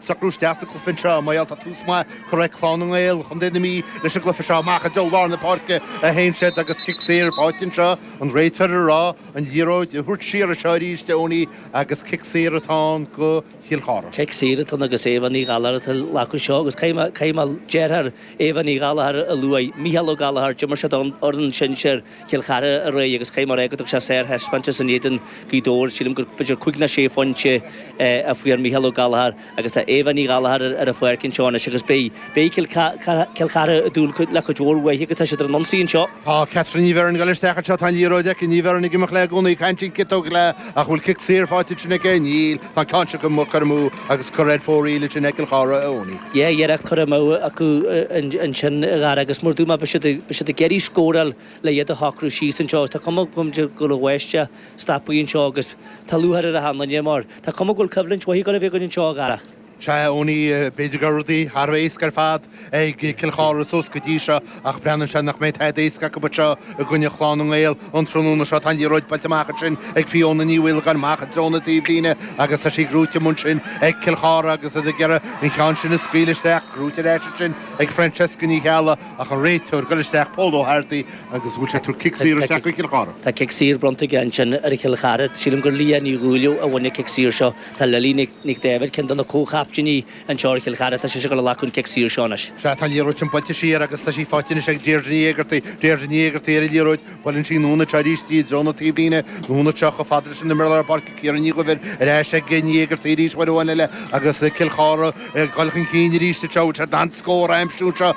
Socrú isteach sa chluiche anseo bhuel tá tús maith curtha ag Clann na nGael, Chontae na Mí, leis an gcluiche seo. Amach i dtreo lár na páirce a théann siad agus cic saor ar fáil anseo. An réiteoir ag rá an liathróid a thabhairt siar anseo arís Eoiní agus cic saor atá ann do Chill Chartha. Cic saor atá ann agus Éabha Ní Ghallachair atá ag glacadh seo agus caithfidh mé deartháir Éabha Ní Ghallachair a lua, Micheál Ó Gallachair, d'imir sé don fhoireann sinsir, Chill Chartha aréir agus caithfidh mé a rá go dtug sé sárthaispeántas in éadan Ghaoth Dobhair. Sílim b'fhéidir cúig ná sé phointe a fuair Micheál Ó Gallachair agus tá Éabha Ní Ghallachair ar an pháirc anseo anois agus beidh Cill Chartha ag dúil le cuid mhór uaithi agus tá siad ar an ionsaí anseo. Tá Catherine Ní Bheirn ag dul isteach anseo, tá an liathróid aici, Ní Bheirn ag imeacht léi i gcónaí, caithfidh sí an cic a thógáil ach an bhfuil cic saor faighte ansin aici? Níl. Tá an ceann seo acu curtha amú agus curtha ar fóraoil ansin ag Cill Chartha Eoiní. Dhá iarracht curtha amú acu ansin i gcarr agus mar a dúirt mé beidh siad ag iarraidh scóráil le iad a shocrú síos anseo agus tá cuma agam de go raibh West ag stapadh anseo agus tá lúcháir ar achan duine mar tá cuma go bhfuil coimhlint mhaith ag gabháil a bheith againn anseo i gcarr. Sea, a Eoiní, b'fhéidir go raibh rudaí thar a bheith éasca ar fad. ag Cill Chartha suas go dtí seo ach breathnaíonn sé nach mbeidh tada éasca acu anseo i gcoinne Chlann na nGael an tráthnóna seo. Tá an liathróid buailte amach ansin ag Fiona Ní Mhaolagáin amach i dtreo na taobhlíne agus tá sí gnóite ansin ag Cill Chartha agus iad ag iarraidh an ceann sin a scaoileadh isteach. Gnóite ar ais ansin ag Francesca Ní Cheallaigh ach an réiteoir ag dul isteach Pól Ó hArdaigh agus an bhfuil sé ag tabhairt cic saor isteach do Chill Chartha? Tá cic saor bronnta aige ansin ar Chill Chartha. Sílim gur Leah Ní Dhúileamh a bhain an cic saor seo. Tá Lily Nic Daibhéid, ceann de na comhchaptaeiní, anseo ar Chill Chartha. Tá sé sin curtha amach chun cic saor seo anois. Sea, tá an liathróid sin buailte siar agus tá sí faighte anois ag Deirdre Ní Éigeartaigh. Deirdre Ní Éigeartaigh ar an liathróid, buaileann sí anonn anseo arís, i dtreo na taobhlíne, anonn anseo chomh fada leis an imreoir lár páirce Ciara Ní Dhuibhir, ar ais ag Ní Éigeartaigh arís, uair amháin eile agus Cill Chartha ag dul chun cinn arís anseo, féachaint leis an scór a aimsiú anseo.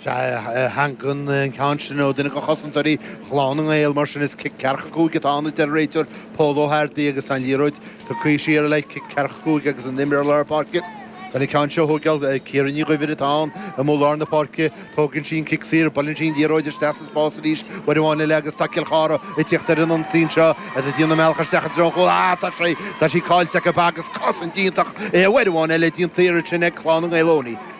Sea, tagann an ceann sin ó dhuine de chosantóirí Chlann na nGael, mar sin is cic ceathracha cúig atá ann, a deir an réiteoir Pól Ó hArdaigh agus an liathróid tugtha siar le haghaidh cic ceathracha cúig agus an imreoir lár páirce ag dul an ceann seo a thógáil, Ciara Ní Dhuibhir, atá ann imreoir lár na páirce. Tógann sí an cic saor, buaileann sí an liathróid isteach sa spás arís, uair amháin eile agus tá Cill Chartha ag teacht ar an ionsaí anseo, iad ag déanamh a mbealach isteach i dtreo an chúl, ah, tá sé, tá sí caillte acu agus cosaint iontach uair amháin eile déanta ansin ag Clann na nGael Eoiní.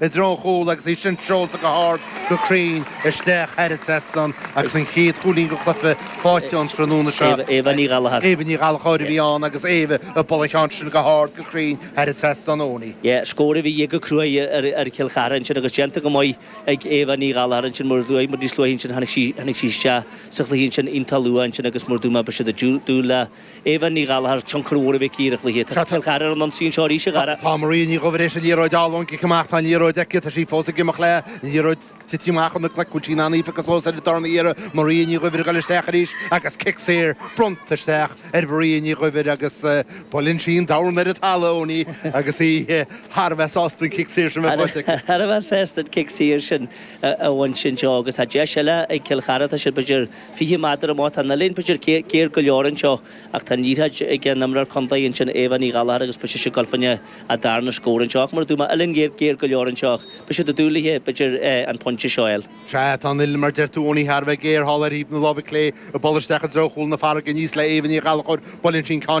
i dtreo an chúil agus í sin seolta go hard go cruinn isteach thar an trasnán agus an chéad chúilín den chluiche faighte an tráthnóna seo. Éabha Ní Ghallachóir. Éabha Ní Ghallachóir a bhí ann agus Éabha ag cur an ceann sin go hard go cruinn thar an trasnán Eoiní. Scór a bhí de dhíth go cruaidh ar Chill Chartha ansin agus déanta go maith ag Éabha Ní Ghallachóir ansin mar bhí muid níos luaithe ansin tháinig sí isteach sa chluiche ansin iontach luath ansin agus mar a dúirt mé beidh siad ag dúil le Eva Ní Ghallachair, tionchar mhór aici ar an gcluiche atá ag cur ar an ionsaí anseo arís a Dhara. Tá Maria Ní Dhuibhir éis an liathróid a fháil ón gcic amach, tá an liathróid aici, tá sí fós ag imeacht léi, an liathróid ag titim amach óna glaic, bhfuil sí in ann í a phiocadh suas ar an darna hiarraidh, Maria Ní Dhuibhir ag dul isteach arís agus cic saor bronnta isteach ar Mharia Ní Dhuibhir agus buaileann sí an dorn ar an talamh, Eoghainí, agus í thar a bheith sásta an cic saor sin bheith faighte aici. Thar a bheith sásta an cic saor sin a bhaint anseo agus tá deis eile ag Cill Chartha, tá siad b'fhéidir, 20 méadar amach. Tá an uillinn b'fhéidir géar go leor anseo, ach tá an liathróid ag an imreoir contae ansin, Aobha Ní Ghallachair, agus ise ag gabháil fá choinne a darna scór anseo. Ach mar a dúirt mé uillinn géar géar go leor anseo, beidh sé doiligh aici, b'fhéidir, an pointe seo a fháil. Sea, tá an uillinn, mar a deir tú, Eoghainí, thar a bheith géar, thall ar thaobh na láimhe clé, í ag bualadh isteach i dtreo chúl na farraige aníos le hAobha Ní Ghallachair, buaileann sí an ceann,